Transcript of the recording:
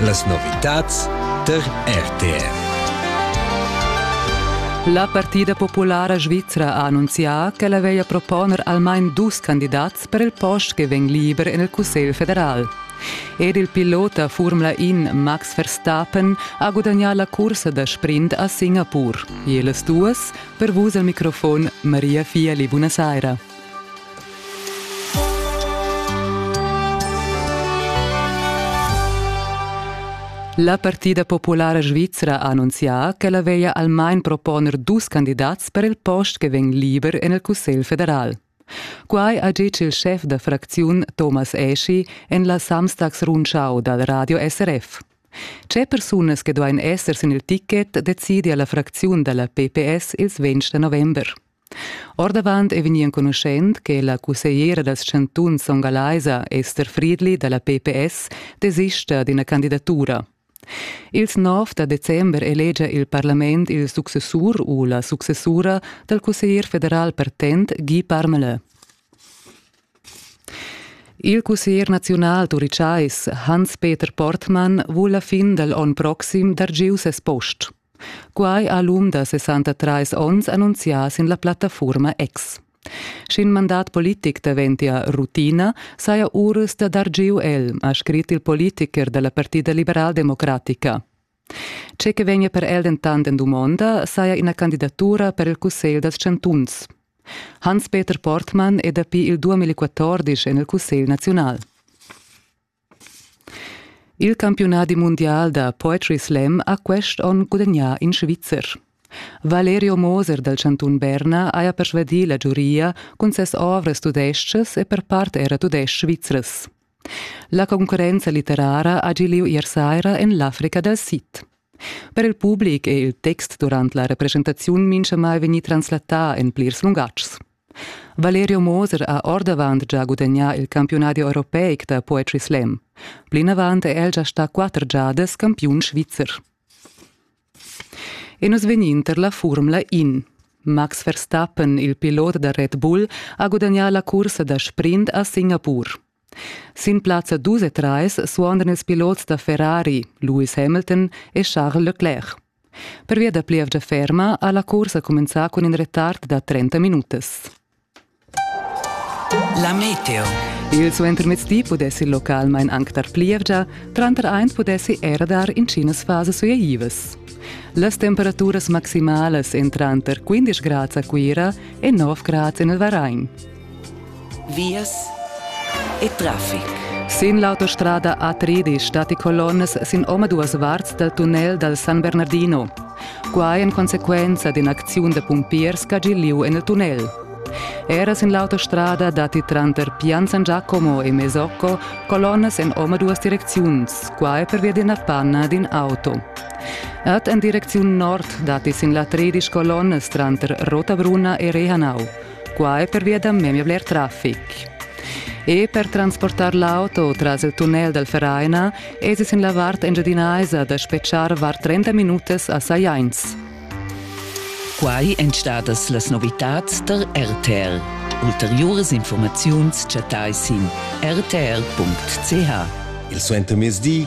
Las novitads tar RTR. La Partida populara svizra ha annunzià ch'ella veglia proponer almain dus candidats per il post che vegn liber en il Cussegl federal. Ed il pilot da Formula In Max Verstappen ha gudagnà la cursa da sprint a Singapur. E las duas, per vus al microfon Maria Fiali, buonasera. La partida populara svizra ha annunzià ch'ella veglia almain proponer dus candidats per il post che vegn liber en il Cussegl federal. Quai ha ditg il schef da fracziun Thomas Eschi en la Samstagsrundschau dal radio SRF. Tge persunas che duain esser sin il ticket decidia la fracziun da la PPS ils 20 november. Ordavant è vegnì enconuschent che la cussegliera dals chantuns songalaisa Esther Friedli da la PPS desista d'ina candidatura. Ils 9 da december elegia il parlament il successur u la successura dal cusseglier federal partent Guy Parmelin. Il cusseglier naziunal turicais Hans-Peter Portmann vul la fin dal onn proxim dar giu ses post. Quai ha l'um da 63 onns annunzià sin la plattafurma X. Sch'in mandat politic daventia rutina, saja Urus da dar giu el, ha scrit il politicher da la Partida liberaldemocratica. Tge che vegnia per el dentant en dumonda saja ina candidatura per il Cussegl dals chantuns. Hans-Peter Portmann è dapi il 2014 en il Cussegl naziunal. Il campiunadi mundial da poetry slam ha quest onn gudagnà in Svizzer. Valerio Moser dal chantun Berna haja persvadì la giuria cun ses ovras tudestgas e per part era tudestg svizras. La concurrenza litterara ha gi lieu ier saira en l'Africa dal Sid. Per il public è il text durant la representaziun mintgamai vegnì translatà en plirs lungatgs. Valerio Moser ha ordavant gia gudagnà il campiunadi europeic da poetry slam. Plinavant è el gia stà quatter giadas campiun svizzer. E nus vegnin tar la Furmla In. Max Verstappen, il pilot da Red Bull, ha gudagnà la cursa da sprint a Singapur. Sin plazza 2 e 3 suondan ils pilots da Ferrari, Lewis Hamilton e Charles Leclerc. Pervia da plievgia ferma ha la cursa cumenzà cun in retard da 30 minutas. La meteo. Il suentermezdi pudessi il localmain anc dar plievgia, tranter eins pudessi era dar intginas fasas sueiivas. Las temperaturas maximalas èn tranter 15 grads a Cuira e 9 grads en il Varain. Vias e traffic. Sin l'autostrada A3 stati colonnas sin omaduas varts dal tunnel dal San Bernardino. Quai en consequenza d'in'acziun da pumpiers ch'ha gì lieu en il tunnel. Era sin l'autostrada datti tranter Pian San Giacomo e Mesocco colonnas en omaduas direcziuns, quai pervia d'ina panna d'in auto. Ed en direcziun nord datti sin la 13 colonnas tranter Rotabrunna e Rehanau. quai pervia da memia bler traffic. E per transportar l'auto tras il tunnel dal Vereina es es in la vart engiadinaisa da spetschar var 30 minutas a Sajains. Quai èn stadas las novitads der RTL. Ulteriuras informaziuns chattai sin rtl.ch. Il suentermezdi